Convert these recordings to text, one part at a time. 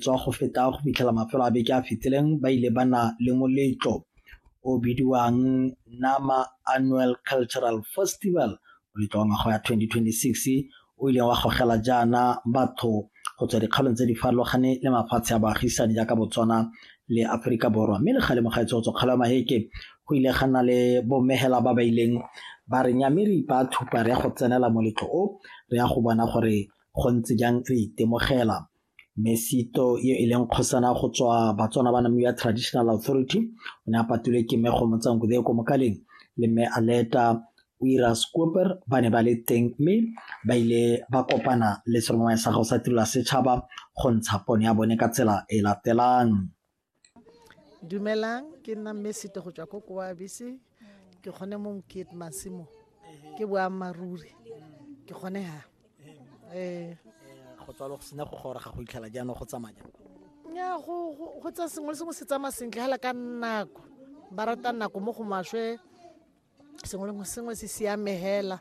tswa go feta go fitlhela mafelo a beke a fetileng ba ile ba na le moletlo o bidiwang nama annual cultural festival moletlo wa ngwaga ya 2026 o ileng wa gogela jaana batho go tswa dikgaolong tse di farologane le mafatshe a baagisani jaaka botswana le aforika borwa mme le kgalemo ga etsotso kgalo ya maheke go ile ga na le bomegela ba ba ileng ba re nya mme re ipa thupa re ya go tsenela moletlo o re ya go bona gore go ntse jang re itemogela Mesito e e leng kgosana go tswa Batswana ba Namibia Traditional Authority o ne a patulwe ke Mme Kgomotsanku Deo ko Mokaleng le Mme Aleta o ira Scooper ba ne ba le teng mme ba ile ba kopana le serongwa sa gago sa tirelo ya setšhaba go ntsha pone ya bone ka tsela e latelang. dumelang ke nna mme sete go tswa ko koabise ke kgone mo mokete masimo ke boammaaruri ke kgone ha um go tswalo go sena go gora ga go itlhela jaanong go tsamaya ya go tsa sengwe le sengwe se tsamaya sentle fela ka nako ba rata nako mo go maswe sengwe le sengwe se siame hela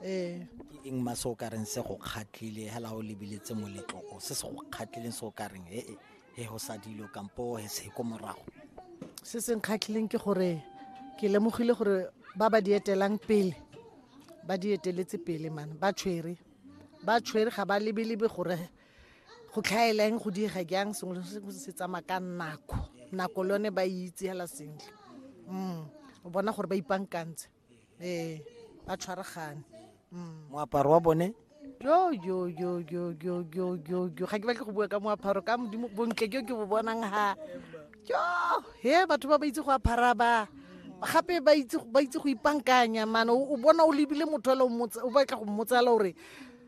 ee ke eng ma se o ka reng se go kgatlhile hela o lebiletse moletlo o se se go kgatlhileng se o ka reng he he go sa dilo kampo he se ko morago se se nkgatlhileng ke gore ke lemogile gore ba ba di etelang pele ba di eteletse pele mane ba tshwere ba tshwere ga ba lebelebe gore go tlhaela eng go diega jang sengwe le sengwe se tsamaya ka nako nako le yone ba e itse hela sentle mm o bona gore ba ipankantse ee ba tshwaragane mm. moaparo wa bone yo yo yo yo yo yo yo yo ga ke batle go bua ka moaparo ka modimo bontle jo ke bo bonang ha jo he batho ba ba itse go apara ba gape ba itse go ipankanya mane o bona o lebile motho o batla go mmotsala gore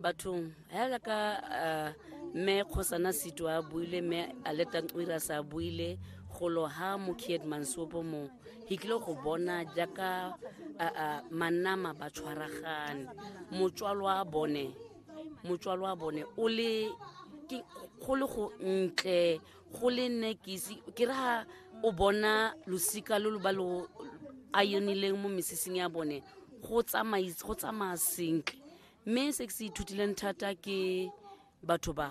bathong hela ka eh, mme kgosana seto a buile mme aletanqira sa buile golo ha mokied mansopo mo he tlile go bona jaaka eh, eh, manama ba tshwaragane motswalo wa bone motswalo wa bone o le go le go ntle go le nne ke ke re ha o bona losika lo lo ba lo a yonileng mo mesesing ya bone go tsamaya sentle mme se ke se ithutileng thata ke batho ba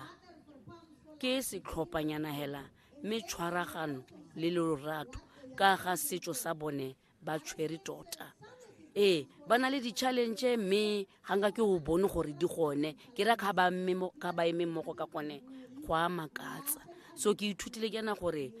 ke setlhophanyana hela mme tshwaragano le lorato ka ga setso sa bone ba tshwere tota ee ba na le di-challenge mme ga nka ke o bone gore di gone ke ra ga ba eme mmogo ka gone go a makatsa so ke ithutile ke na gore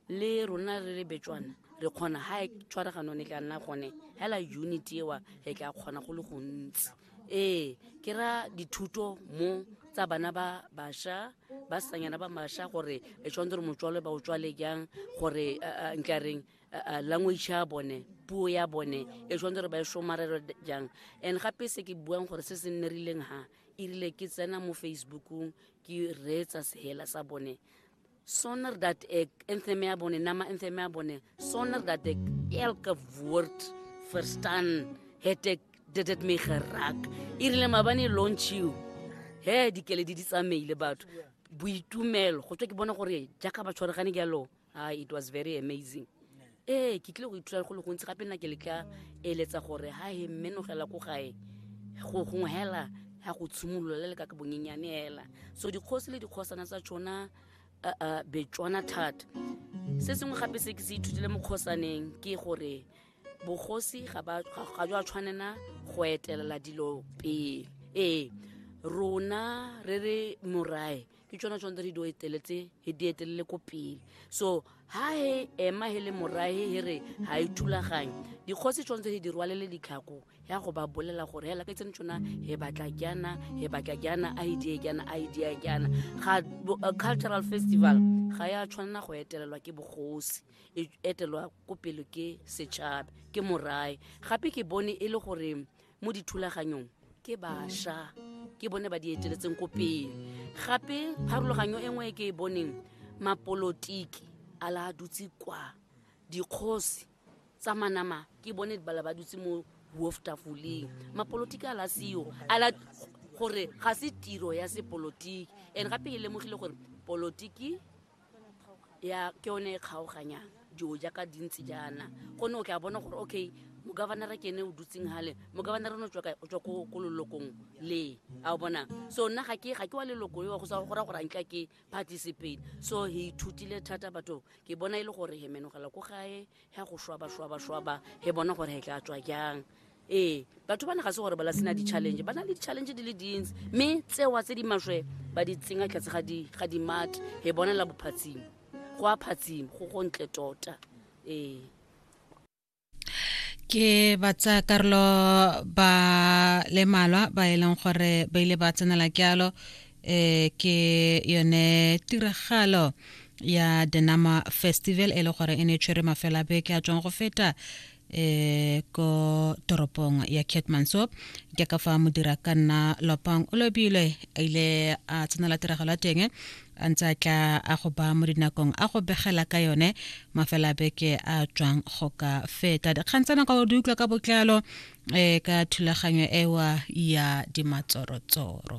le rona re le betswana re kgona ga e tshwaragano ne ka nna gone hela unit ewa re tla kgona go le gontsi ee ke ra dithuto mo tsa bana ba basha ba sanyana ba masha gore e tshwanetse gore motswalwe ba o tswale jang gore eh, eh, nkareng eh, language ya bone puo ya bone e tshwanetse gore ba e somarelo jang and gape se ke buang gore se se nne rileng ha e rile ke tsena mo facebookong ke reetsa sehela sa bone sonder dat ek inthemia bone nama inthemia bone sonder dat ek elke woord verstaan het ek dit het my geraak irile mabane launch you he di kele di di tsamaile batho boitumelo go tswe ke bona gore jaaka ba tshwaregane jalo ah it was very amazing ee ke tlile go ithuta go le gontsi gape nna ke le ka eletsa gore ha he mmenogela ko gae go gongwe hela ya go tshimolola le le ka ka bonyenyane hela so dikgosi le dikgosana tsa tsona uh, uh, betswana thata se sengwe gape se ke se ithutile mo kgosaneng ke gore bogosi ga ba- ga- ga jwa tshwanela go etelela dilo pele ee rona re re morae ke tsona tsone tse re di eteletse he di etelele ko pele so ha he ema he le morahe he re ha e thulaganye dikgosi tsone tse he di rwalele ditlhako ya go ba bolela gore hela ke tsene tsona he batla jana he batla jana a e die jana a e die jana ga uh, cultural festival ga ya tshwanela go etelelwa ke bogosi e etelwa ko pele ke setšhaba ke morae gape ke bone e le gore mo dithulaganyong ke basha ke bone ba di eteletseng ko pele gape pharologanyo e nngwe e ke e boneng mapolotiki a la a dutse kwa dikgosi tsa manama ke bone bala ba dutse mo wolftafoleng mapolotiki a la seo a la gore ga se tiro ya sepolotiki and gape e lemogile gore polotiki ya ke yone e kgaoganyang dilo jaaka dintsi jaana gonne o tla bona gore okay mogavanara ke ene o dutseng gale mogavanara ne o tswa ko lelokong le a o bona so nna ga ke ga ke wa leloko yo go sa go ra gore antle ke participate so he ithutile thata batho ke bona e le gore he menogela ko gae he go shwaba shwaba shwaba he bona gore he tla tswa jang ee batho ba ne ga se gore ba la sena di-challenge ba na le di-challenge di le dintsi mme tsewa tse di maswe ba di tsenya tlhatse ga dimate he bonela bophatsimo go a phatsimo go go ntle tota ee ke batsa karolo ba le malwa ba e leng gore ba ile ba tsenela kealo eh ke yone tiragalo ya denama festival e le gore e ne e tshwere mafela beke a tswang go feta eh, ko toropong ya ketmanso ke ka fa modira ka nna lopang o lobile a ile a tsenela tiragalo ya teng a ntse a tla a go ba mo dinakong a go begela ka yone mafela beke a tswang go ka feta dikgang tsena ka o di utlwa ka botlalo um ka thulaganyo ewa ya dimatsorotsoro